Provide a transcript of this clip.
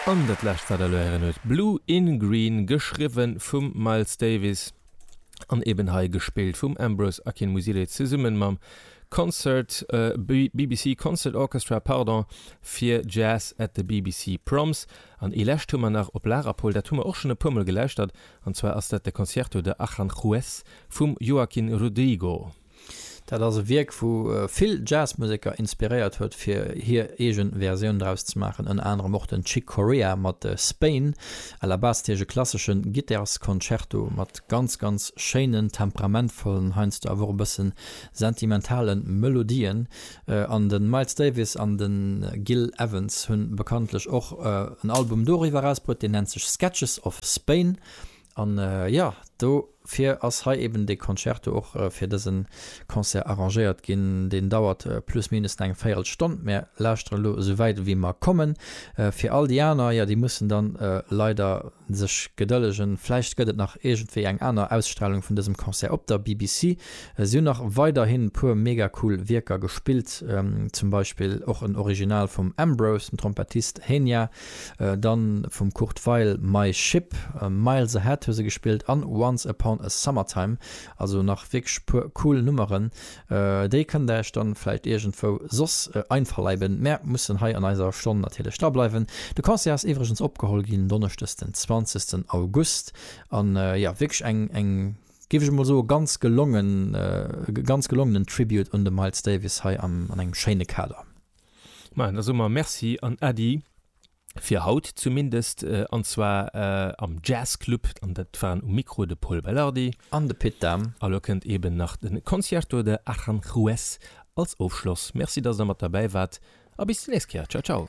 An dat lescht wat der elo héieren huet Blue in Green geschriwwe vum Miles Davis an eben hei gespillt vum Ambrose Akinmusire zesummen mam Concert, BBC Concert Orchestra pardon, fir Jazz at the BBC Proms. An ee lescht hu mer nach op Lager Pol, dat hu mer och schonn e puer mol gelauschtert, an zwar ass dat de Concierto de Aranjuez vum Joaquin Rodrigo. Dat ass e Wierk, wou vill Jazzmuseker inspiréiert huet, fir hir eege Versioun draus ze maachen, ënner anerem och den Chick Corea mat Spain, Alabastisch, e klassesche Gittarsconcerto mat ganz, ganz schéinen, temperamentvollen, heiansdo awer och e bësse sentimentale Melodien. An de Miles Davis an de Gil Evans hu bekanntlech och en Album doriwwer erausbruet, deen nennt sech Sketches of Spain. An jo, dofir ass hei eben dee Concerto och fir dësen Concert arrangéiert ginn. Deen dauert plus minus eng véirel Stonn. Mär lauschteren elo esou wäit ewéi mer kommen. Fir all déi aner, jo, déi mussen dann leider sech gedëllegen. Vläicht gëtt et nach iergendwéi eng aner Ausstralung vun dësem Concert op der BBC. Si hunn nach weiderhin puer mega cool Wierker gespillt, zum Beispill och en Original vum Ambrose, den Trompettist Henia. Dann vum Kurt Weill My Ship, Miles Ahead hu se gespillt an Once Upon A Summertime. Also nach wierklech puer cool Nummeren. Déi kënnt der iech dann vläicht iergendwou soss einverleiben. Mär mussen hei an eiser Stonn natierlech dra bleiwen. De Concert ass iwwregens opgeholl ginn Donneschdes den 20 August an jo wierklech eng eng géif ech emol soen ganz gelongen ganz gelongenen Tribute un de Miles Davis hei an engem schéine Kader. Maann, da soe mer Merci an Äddi fir haut zumindest, an zwar am Jazzclub, an dat waren um Mikro de Pol Belardi. An de Pit Dahm. A lo kënnt eben nach de Concierto de Aranjuez als Ofschloss. Merci, dass Der mat derbäi waart a bis déi nächst Kéier. Ciao, ciao.